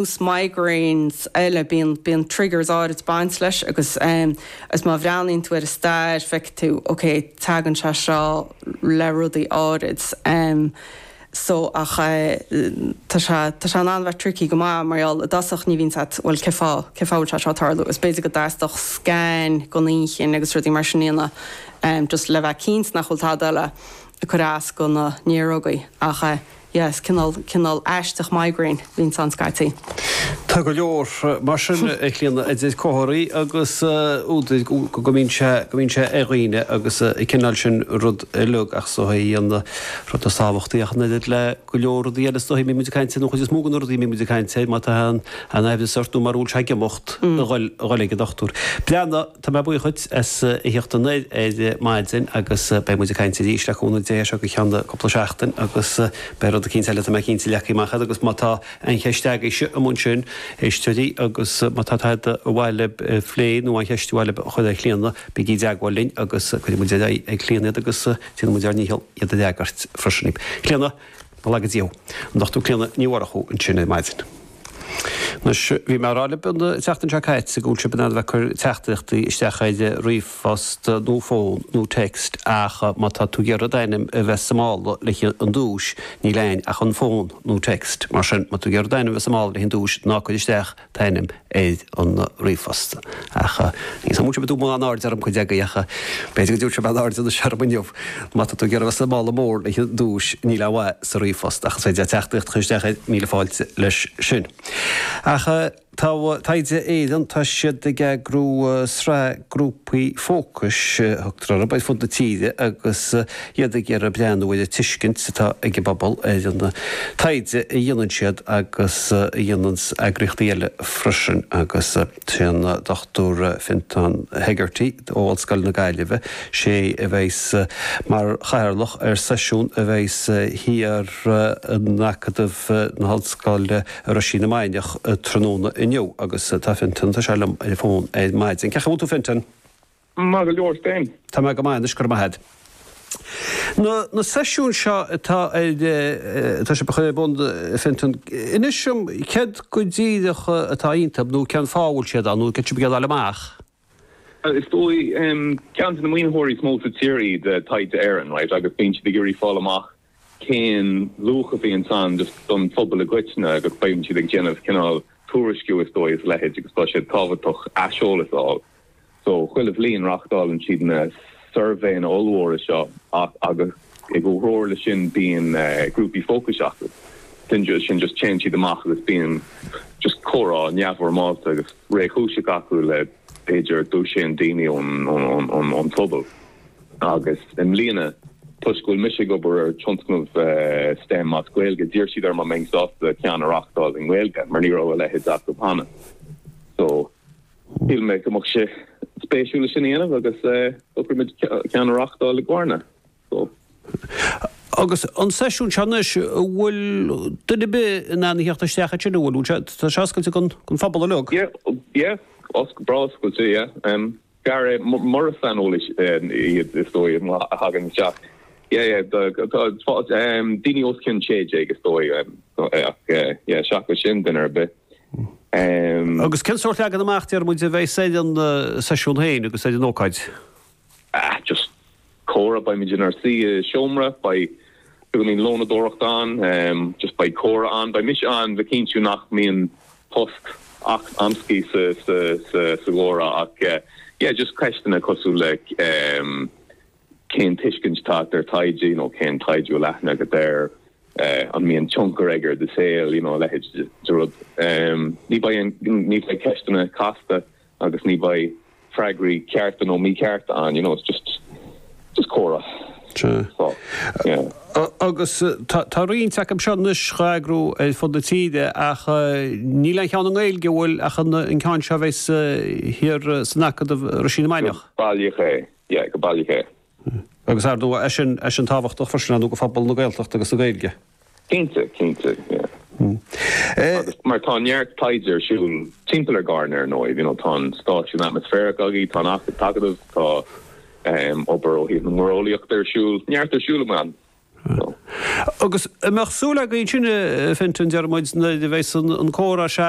thús migraines eile bíonn bíonn triggers áirid ag baint leis agus agus má bhreathnaíonn tú ar an stair feicfidh tú ok teagann sé seo le rudaí áirid so ach tá sé tá sé in ann a bheith tricky go maith mar gheall i dtosach ní bhíonn a fhios agat bhfuil cé fá cé fá bhfuil sé seo ag tarlú is b'fhéidir go dteastódh scan gon inchinn agus rudaí mar sin a dhéanamh just le bheith cinnte nach bhfuil tada eile ag cur as do na néarógaí ach Yes, cineál, cineál aisteach migraine a bhíonns ann scaití. Tá go leor mar sin, a Chlíodhna, idir comharthaí agus údair go mbíonn sé, go mbíonn sé ar dhaoine agus an cineál sin rud uilig ach is dóigh í an rud is tábhachtaí ach an oiread le go leor rudaí eile is dóigh a mbíonn muid ag caint, nó an chuid is mó de na rudaí a mbíonn muid ag caint air, má tá aon aimhreas ort nó mura bhfuil sé ag imeacht, a dhul, a dhul ag an dochtúir. Breandán. Tá mé buíoch dhuit as a thíocht anoir ar maidin agus beidh muid ag caint arís le cúnamh Dé as seo go ceann cúpla seachtain agus beidh rud eicínt eile tá mé cinnte leagtha amach agat agus má tá aon cheist agaibhse amuigh ansin éisteoirí agus má tá tada ba mhaith libh a phlé nó aon cheist ba mhaith libh a chur ar Chlíona bígí i dteagmháil linn agus cuirfidh muid ar aghaidh ag Clíona iad agus déanfaidh muid ár ndícheall iad a fhreagairt freisin. Clíona, go raibh míle maith agat. An Dr. Clíona Ní Mhurchú ansin ar maidin. Anois, bhí mé ag rá libh an tseachtain seo caite go bhfuil sibh in ann a bheith ag cur teachtaireachtaí isteach ar ríomhphost nó fón nó text ach má tá tú ag iarraidh d'ainm a bheith sa mála le haghaidh an duais, níl ann ach an fón nó text. Mar sin, má tá tú ag iarraidh d'ainm a bheith sa mála le haghaidh an duais, ná cuir isteach t'ainm ar an ríomhphost. Ach ní thugann muintir Dhubh mórán airde ar an gcuid agaibh, ach b'fhéidir go dtabharfadh sé beagán airde anois orm inniu. Má tá tú ag iarraidh a bheith sa mála mór le haghaidh duais, níl a dhath sa ríomhphost, ach is féidir leat teachtaireacht a chur isteach ar, míle fáilte leis sin. Ach tá Taighde Éireann, tá siad ag eagrú sraith grúpaí fócais, a thugtar orthu, ar fud na tíre agus iad ag iarraidh breathnú ar an tuiscint atá ag an bpobal ar an taighde a dhéanann siad agus a dhéananns eagraíochtaí eile freisin agus, Tá an Dr Fintan Hegarty ó Ollscoil na Gaillimhe, sé a bheidh mar chathaoirleach ar seisiún a bheidh thiar in Acadamh na hOllscoile i Roisín na Mainiach tráthnóna inniu agus tá Fintan, tá sé liom ar an bhfón ar maidin. Cén chaoi a bhfuil tú Fintan? Maith go leor is tú féin. Tá mé go maith anois, go raibh maith agat. Na na seisiúin seo atá ar atá sibh a chur ar bun Fintan, inis dom céard go díreach atá iontu nó cén fáth a bhfuil siad ann nó céard atá sibh ag iarraidh a fháil amach? Is dóigh ceann de na maoinitheoirí is mó sa tír iad Taighde Éireann right agus bíonn siad ag iarraidh fáil amach cén luach a bhíonns ann just don phobal i gcoitinne agus bíonn siad ag déanamh cineál tuairisciú is dóigh is a leithéid agus tá sé tábhachtach aiseolas a fháil. So chuile bhliain reáchtálann siad na suirbhéanna ollmhóra seo ach agus i gcomhthreomhar leis sin bíonn grúpaí fócais acu, sin just sin just téann siad amach agus bíonn just comhrá neamhfhoirmeálta agus réchúiseach acu le, b'fhéidir, dosaen daoine ón phobal. Agus i mbliana, toisc go bhfuil mise ag obair ar tionscnamh stem as Gaeilge, d'iarr siad orm an mbeinn sásta ceann a reachtáil i nGaeilge mar ní raibh a leithéid acu cheana. So, shíl mé go mbeadh sé spéisiúil é sin a dhéanamh agus shocraigh muid ceann a reachtáil i gCarna. So. Agus an seisiún seo anois, an bhfuil duine ar bith in ann a theacht isteach ansin, an bhfuil? Tá sé oscailte don phobal uilig? Yeah, yeah, oscailte, breá oscailte, yeah. Go háirithe mura saineolaithe iad is dóigh a thagann isteach yeah yeah daoine os cionn 16 is dóigh ach yeah seachas sin duine ar bith. Agus cén sórt leagan amach deir muid a bheas ar an seisiún féin agus ar an ócáid? Ah just Comhrá, Beimid inár suí i seomra, beidh beagáinín lónadóireacht ann, just beidh comhrá ann, beidh mise ann le cinntiú nach mbíonn tost amscaí sa gcomhrá ach yeah just ceisteanna cosúil le cén tuiscint atá agat ar taighde, you know cén taighde a bhfuil eolas agat air, an mbíonn tionchar aige ar do shaol, you know a leithéid de rud. Ní bheidh ceisteanna casta. agus ní bheidh freagraí cearta nó míchearta ann, you know, it's just, just comhrá. So, yeah. Agus tá roinnt acu seo anois dhá eagrú ar fud na tíre ach níl aon cheann i nGaeilge a bhfuil ach an ceann seo a bheas thiar san Acadamh Roisín na Mainiach. Go baileach é, yeah, go baileach é. Agus ar ndóigh, tá sé sin, sé sin tábhachtach freisin, ar ndóigh, do phobal na Gaeltachta agus na Gaeilge. Cinnte, cinnte, yeah. Agus mar tá neart taighde ar siúl timpeall ar Charna ar ndóigh, you know, tá an stáisiún atmaisféarach agaibh, tá an t-Acadamh, tá obair ó thaobh na muireolaíochta ar siúl, neart ar siúl ann, so. Agus an mbeadh súil agat ansin, Fintan, deir muid, nuair a bheas an comhrá seo,